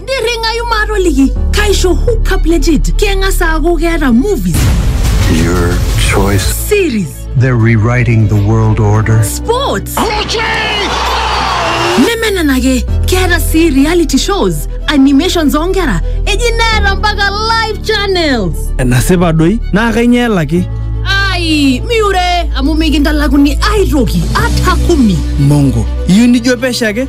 nirringayu maatoliki kaisho hookup legit keng'as aaku keeta movies Your choice. series They're rewriting the world order. sports neme nena ake keeta sii reality shows animations oonkera eji neeta mpaka live channels enasipa doi naa kainyoo elaki ai miure amu mikintalakuni aitoki ata kumi mongo iyieu nijo pesho ake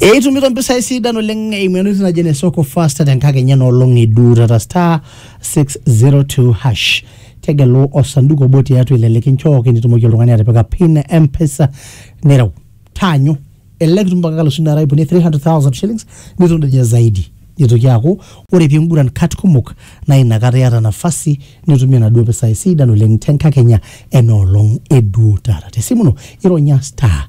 Eitumito mpisai sidan oleng eimu entoki naji ene soko fasta tenkakenya enoolong e duo taata star 602 hash tegelu osanduku obo tiatua ile likinchooki nitumoki oltung'ani atipika pin e mpesa nireu taanyu elelek itum mpaka kalusu nara ipuni 300,000 shillings nitum doi ninye zaidi nitoki aaku ore pinguran kat kumok naa inakata iyata nafasi nitumie naduo pisai sidan oleng tenkakenya enoolong e duo taata tesimu ino ironya star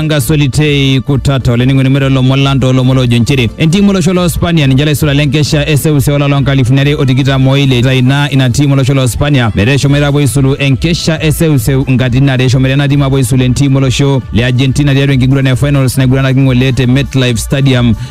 Tanga Solitei Kutata olainining'oni mero lomon lang toolomon loojo nchere entiim olosho loo Spania ninche laisula lenkesha eseuseu olapa loo nkalifuni are o tikitam oile ita ina ina tiim olosho loo Spania metaa eshomoita apuo aisulu enkesha eseuseu nkatitin are eshomoita ena tiim apuo aisulu entiim olosho le Argentina tiatua enkiguran e finals naiguranaki ng'ole te MetLife Stadium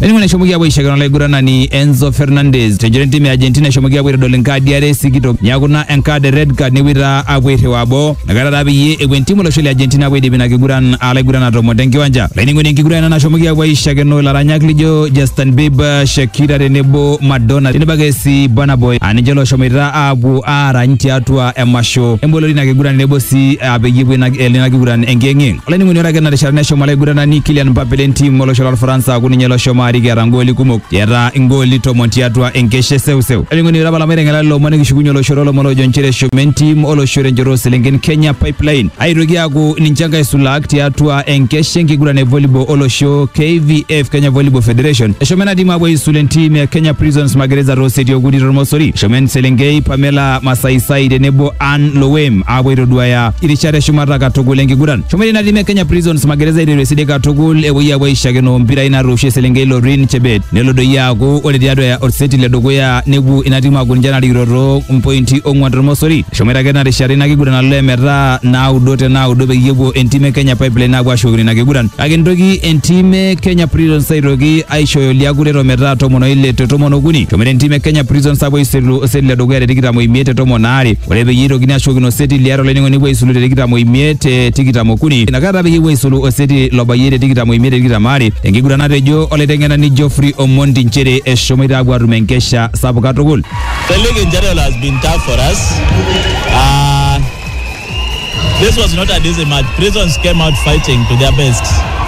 Eningo neshomoki apuo aishakino olaiguranani Enzo Fernandez tenchoto entim e Argentina eshomoki apuo aitodol enkaadi are sikitok neaku ina enkaad e red card nepuoi taa apuo airriwaa boo Nakata taa peyie epuo entimu olosho le Argentina apuo aidip ina kiguran alaiguran atomon tenkiwanja. Laining'oni enkiguran ena nashomoki apuo aishakeno ilaranyak lijo Justin Bieber, Shakira tenebo Madonna tenebo ake sii Burna Boy aa ninche looshomoita aapuo aarany tiatua emasho emboloto ina kiguran tenebo sii aa peyie epuo ina elo ina kiguran enkiyeng'iyeng. Olainining'oni ore ake ina rishata neshomo olaiguranani Kylian Mbappe le ntim olosho lolfaransa aaku ninye loshomo arik eeta ngooli kumok. Eeta ingooli tomon tiatua enkeshe seuseu. Oling'oni iraba lamairenga la lomon nikishukunye olosho lolomon ojo nchere eshomo entim olosho tenchoto oselenken Kenya Pipeline aitoki aaku ninche enkae sulak tiatua enkeshe enkiguran e volleyball olosho KVF Kenya Volleyball Federation. Eshomo ena tim aapuo aisul entim e Kenya Prisons Magereza tooseti okuni tormosori. Eshomo eselenkei Pamela Masaisai tenebo Ann Lowem aapuo aitoduaya irishat eshumata katukul enkiguran. Shumari na lime Kenya Prisons magereza eteresi katukul epuoi aapuo aishakino mpirai naatoosho eselenkei Lorin Chebet nelo doi aaku ore tiatua ya orseti le dukuya nepuo ina timu aaku ninche narikito too mpointi ong'uan tormosori eshomoita ake ena rishata ina kiguran alo emetaa naudo te naudo peyie epuo entim e Kenya Pipeline aapuo ashukokino ina kiguran kake nitoki entim e Kenya Prisons aitoki aishooyo liakuret ometaa tomon oile te tomon okuni eshomoita entim e Kenya Prisons aapuo aisulu oseti le dukuya te tikitam oimiet te tomon aare Ore peyie eitokini ashukokino oseti liare olainining'oni epuo aisulu te tikitam oimiet te tikitam okuni inakata peyie epuo aisulu oseti lobayie te tikitam oimiet te tikitam aare enkiguran natejo olaiteng'enani Geoffrey Omondi nchere eshomoita apuo atum enkesha sapuk katukul. The league in general has been tough for us. Uh, this was not an easy match. Prisons came out fighting to their best.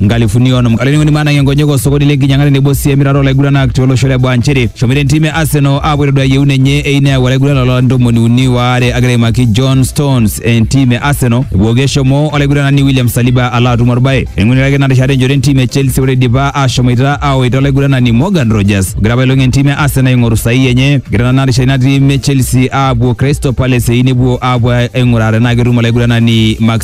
nkalifuni onom olainining'oni maanang'ie nkonyek osokoni le nkinyang'a tenebo sii emirata olaiguranak tiolosho le baa nchere eshomoita entim e Arsenal aapuo aitodua yieun enye eyieu neyau olaiguranani loo larin ntomoni uni waare agira aimaki John Stones entim e Arsenal epooki eshomo olaiguranani William Saliba alo atum orbae eing'uraki ina rishata enjoto entim e Chelsea ore eidipa aashomoita aaoita olaiguranani Morgan Rogers ogira apailong entim e Arsenal aing'oru sahihi enye egira nena rishata ina tim e Chelsea aapuo Crystal Palace eyieu nepuo aapuo aing'uraa tenaa ketum olaiguranani Max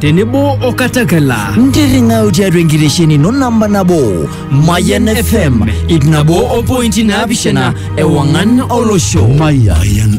tenebo o katakala ntirring'au tiatua enkitesheni ino namba nabo mayan fm ip nabo o pointi naapishana ewang'an olosho Mayan